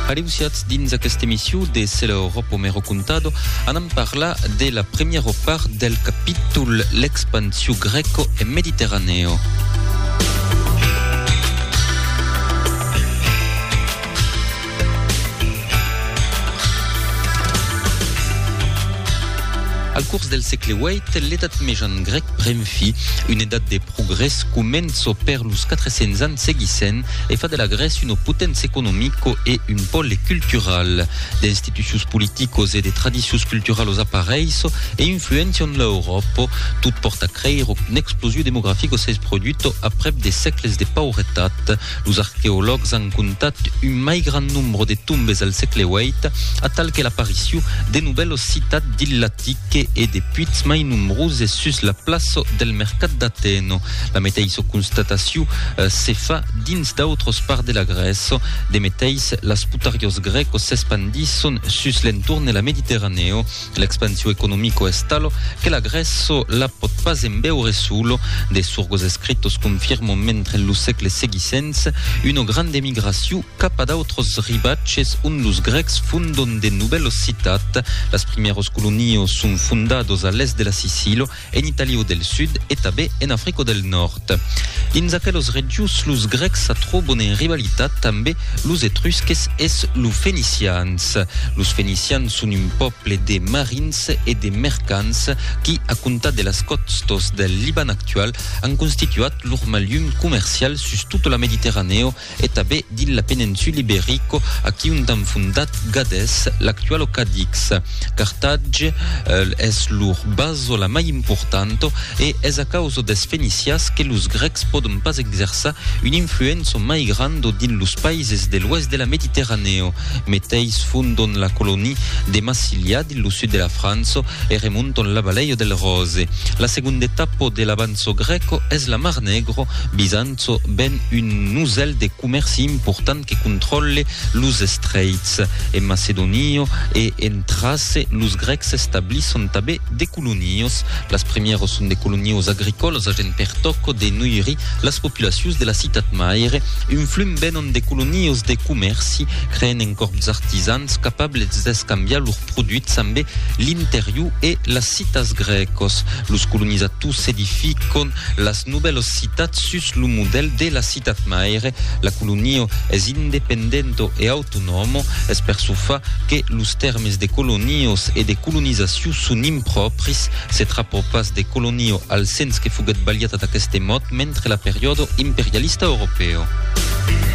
Aleusiatz dins aquesta emission de Se l'Europo me recontado, anam parlar de la premiera part del capítol L'expansiu greco e mediterraneo. Al curs del sègle viii, l'edat mejan grec pren fi, una edat de progrès començo per los 400 ans seguissents, e fa de la Grèce una poténcia economico e un pòle cultural. D'institucions politicos e de tradicions culturalos aparèisso e influéncian l'Euròpa, tot pòrta creire qu'una explosiu demografico s'es produto aprèp de sècles de pauretat. Los arqueològs an comptat un mai grand nombre de tombes al sègle viii, atal que l'apariciu de novèlos citats dins l'Atique e de puits mai nombroses sus la plaça del mercat d'Atèna. La meteissa constatacion se fa dins d'autros parts de la Grèça. De meteis, las putariós grècos s'espandisson sus l'entorn de la Mediterranèo. L'expansion economico es talo que la Grèço la pòt pas embeure solo. De surgos escritos confirmon mentre lo sègle seguissents una granda emigracion cap a d'autros ribatges ont los grècs fondon de novèlos citats. Las primièros colonios son fondados a l'èst de la Sicilo. en Italiu del Sud e tabé en Africo del Nòrd. Dins aquelos regius los Grecs sa trobon en rivalitat tanbé los Etrusques es lo Fenicians. Los Fenicians son un pòple de marins e de mercants qui, a comptar de las còstos del Liban actual, an constituat lor malhum comercial sus tota la Mediterranèo e tabé dins la peninsula Iberico aquí ont an fondat Gades, l'actualo Cadix. Carthatge es lor baso la mai importanto e es a causa des Fenicias que los Grecs pòdon pas exerçar un influenço mai grando dins los paises de l'oèst de la Mediterranèo. Meteis fondon la colonia de Massilia dins lo sud de la França e remonton la Baleio del Ròse. La segonda etapa de l'avanço grèco es la Mar Negro, Bizanci, çò ven un nusèl de comèrci important que contròlle los estreits. En Macedonio e en Trace, los grècs establisson tabé de colonios. Las primièras son de colonios agricòlas agent per tòco de noirir las populacions de la citat maire. Un flum venon de colonios de comèrci, creent un còrp d'artisans capables d'escambiar lors produits ambe l'interior e las citas grècas. Los colonizators s'edificon Las nouvèlos citats sus lo modèl de la citat maire, la colonio es independento e autonòmo, es per çò fa que los tèrmes de colonios e de colonizaciu son impròpris, se trapò pas de colonio al sens que foguèt balhat ad aqueste mot mentre la periòdo imperialista europèo.